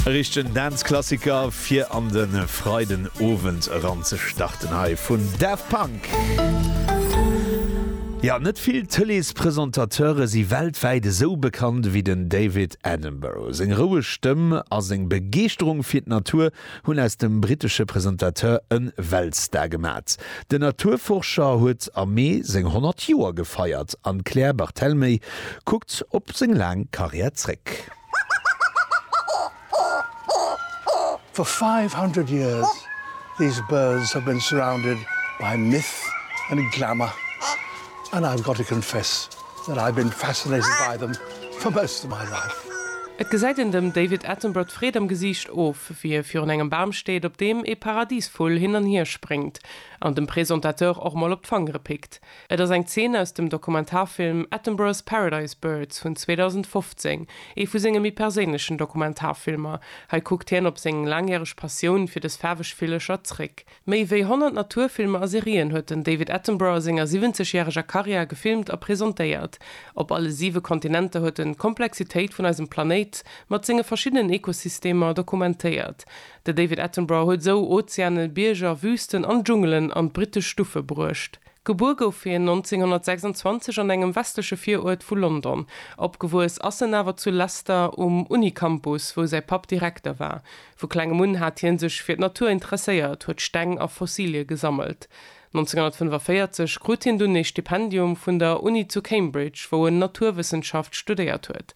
E richtegen Dance-Klassiker fir an de Freiden Owend eran ze starten hei vun Daft Punk. Jo, net vill Tëleespresentateuren si weltwäit esou bekannt ewéi den David Attenborough. Seng roueg Stëmm a seng Begeeschterung fir d'Natur hunn aus dem brittesche Presentateur e Weltstar gemat. Den Naturforscher huet am Mee seng 100 Joer gefeiert an d'Claire Barthelmey kuckt op seng laang Karriär zréck. For 500 years these birds have been surrounded by myth and glamour and I've got to confess Et gesäit een dem David Attenborough d'Freed am Gesiicht of, wéi e virun engem Bam steet, op deem ee Paradisvull hin an hier spréngt an dem Presentateur och mol op d'Fangere pickt. Et ass eng Zeen aus dem Dokumentarfilm Attenborough's Paradise Birds vun 2015, ee vu senge méi perséinlechen Dokumentarfilmer. Hei kuckt hien op seng laangjäreg Passioun fir dës faarweg Villecher zréck. Méi wéi 100 Naturfilmer a Serien huet den David Attenborough a senger 70 järeger Karriär gefilmt a presentéiert. Op alle siwe Kontinenter huet en d'Komplexitéit vun eisem Planéit mat senge verschiddenen Ekosystemer dokumentéiert. De David Attenborough huet esou Ozeanen, Bierger, Wüsten an Dschungelen an d'brittesch Stuffe bruecht. Gebuer gouf hien 1926 an engem westleche Viruert vu London. Opgewuess ass en awer zu Leicester um Uni-Campus, wou säi Papp Direkter war. Vu klengem un hat hie sech fir d'Natur interesséiert, huet Steng a Fossilie gesammelt. 1945 krut hien dunn ee Stipendium vun der Uni zu Cambridge, wou en Naturwëssenschaft studéiert huet.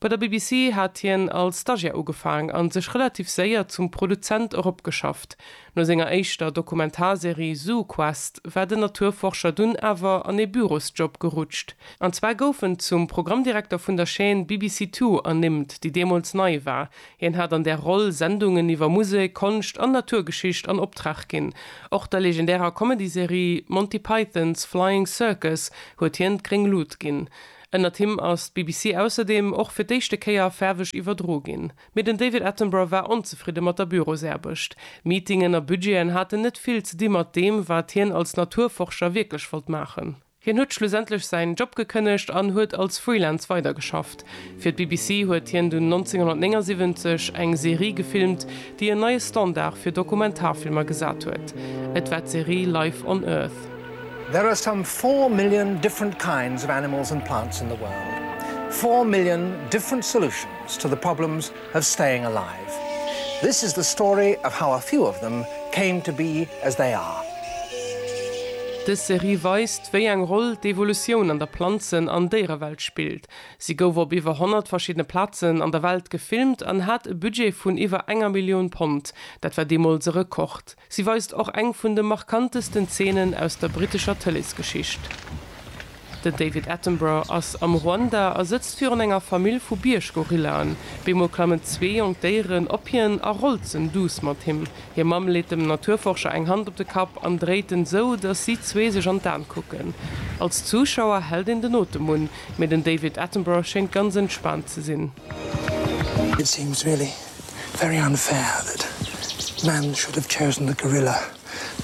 Bei der BBC hat hien als Stagiär ugefaang a sech relativ séier zum Produzent eropgeschafft. No senger éischter Dokumentarserie ZooQuest war den Naturforscher dunn awer an ee Bürosjob gerutscht. An zwar gouf en zum Programmdirekter vun der Chaîne BBC Two ernimmt, déi deemools nei war, Hien hat an där Roll Sendungen iwwer Musek, Konscht an Naturgeschicht an Optrag ginn. Och der legendärer Comedy-Serie Monty Python's Flying Circus huet hien d'gréng Lut ginn. Ënnert him ass d'BBC ausserdeem och fir d'éischte Kéier faarweg iwwerdro ginn. Mee den David Attenborough war onzefridde mat der Bürosaarbecht. Meetingen a Budgeten haten net vill ze di mat deem, wat hien als Naturforscher wierklech wollt maachen. Hien huet schlussendlech säin Job gekënnegt an huet als Freelance weidergeschafft. Fir d'BBC huet hien dunn 1979 eng Serie gefilmt, déi en neie Standard fir Dokumentarfilmer gesat huet. Et war d'Serie Life on Earth. There are some four million different kinds of animals and plants in the world. Four million different solutions to the problems of staying alive. This is the story of how a few of them came to be as they are. Dës Serie weist, wéi eng Roll d'Evolutioun an der Planzen an Déierewelt spillt. Si gouf op iwwer 100 verschiddene Plazen an der Welt gefilmt an hat e Budget vun iwwer enger Millioun Pond, dat war deemools e Rekord. Si weist och eng vun de markantesten Zeenen aus der brittescher Tëleesgeschicht. Den David Attenborough ass am Ruanda a sëtzt virun enger Famill vu Bierggorillaen. Beemol klammen zwee jonk Déieren op hien a rolzen duuss mat him. Hir Mamm leet dem Naturforscher eng Hand op de Kapp an dréit en esou, datt si zwee sech an d'An kucken. Als Zuschauer hält een den Otem un, mee den David Attenborough schéngt ganz entspaant ze sinn. It seems really very unfair that man should have chosen the gorilla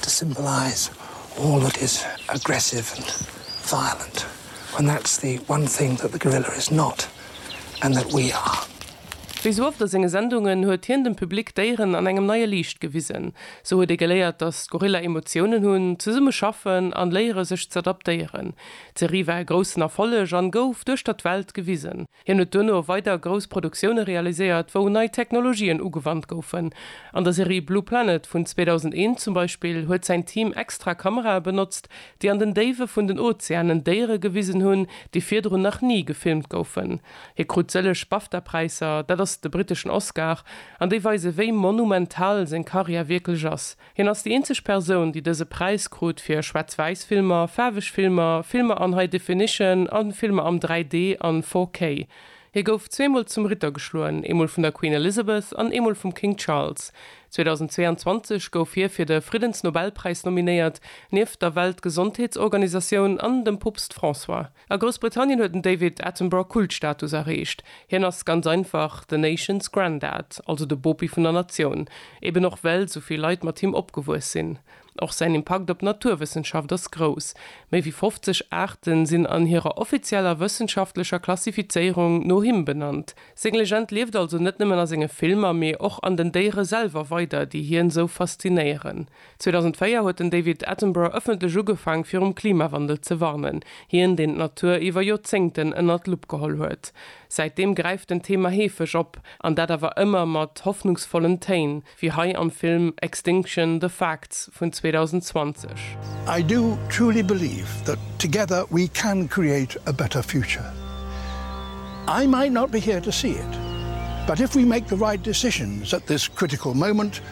to symbolise all that is aggressive and violent when that's the one thing that the gorilla is not and that we are. Wéi sou oft a senge Sendungen huet hien dem Public d'Déieren an engem neie Liicht gewisen. Sou huet ee geléiert, datt d'Gorilla Emotiounen hunn, zesumme schaffen an léiere sech z'adaptéieren. D'Serie war e groussen Erfolleg an gouf duerchter d'Welt gewisen. Hien huet duerno weider grouss Produktioune realiséiert, wou nei Technologien ugewannt goufen. An der Serie Blue Planet vun 2001 zum Beispill huet säin Team extra Kamerae benotzt, déi an den Déiwe vun den Ozeanen Déiere gewisen hunn, déi virdrun nach ni gefilmt goufen. Hie krut sëlleg BAFTA-Präisser, dat ass de britteschen Oscar, an déi weise wéi monumental seng Karriär wierklech ass. Hien ass déi eenzeg Persoun, déi dëse Präis krut fir Schwaarz-Wäiss-Filmer, faarweg Filmer, Filmer an High Definition a Filmer am 3D an 4K. Hie gouf zweemol zum Ritter geschloen, eemol vun der Queen Elizabeth an eemol vum King Charles. 2022 gouf hie fir de Friddensnobelpräis nominéiert, nieft der Weltgesondheetsorganisatioun an dem Poopst François. A Groussbritannien huet den David Attenborough Kultstatus erreecht. Hien ass ganz einfach the nation's granddad, also de Bopi vun der Natioun, eben och well esou vill Leit mat him opgewuess sinn. Och säin Impakt op d'Naturwëssenschaft ass grouss, méi wéi 50 Aarten sinn an hirer offizieller wëssenschaftlecher Klassifizéierung no him benannt. Seng Legend lieft also net nëmmen a senge Filmer, mee och an den Déiere selwer weider, déi hien esou faszinéieren. 2004 huet den David Attenborough ëffentlech ugefaang fir um Klimawandel ze warnen, hien deen d'Natur iwwer Joerzéngten ënnert d'Lupp geholl huet. Säitdeem gräift den Thema heefeg op, an dat awer ëmmer mat hoffnungsvollen Téin, wéi hei am Film Extinction, The Facts vun 2020. I do truly believe that together we can create a better future. I might not be here to see it, but if we make the right decisions at this critical moment,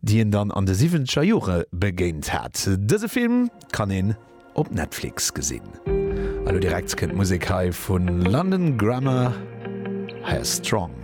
déi een dann an de siwwenzeger Jore begéint hat. Dëse Film kann een op Netflix gesinn. A lo direkt kënnt d'Musek hei vu London Grammar, Hair Strong.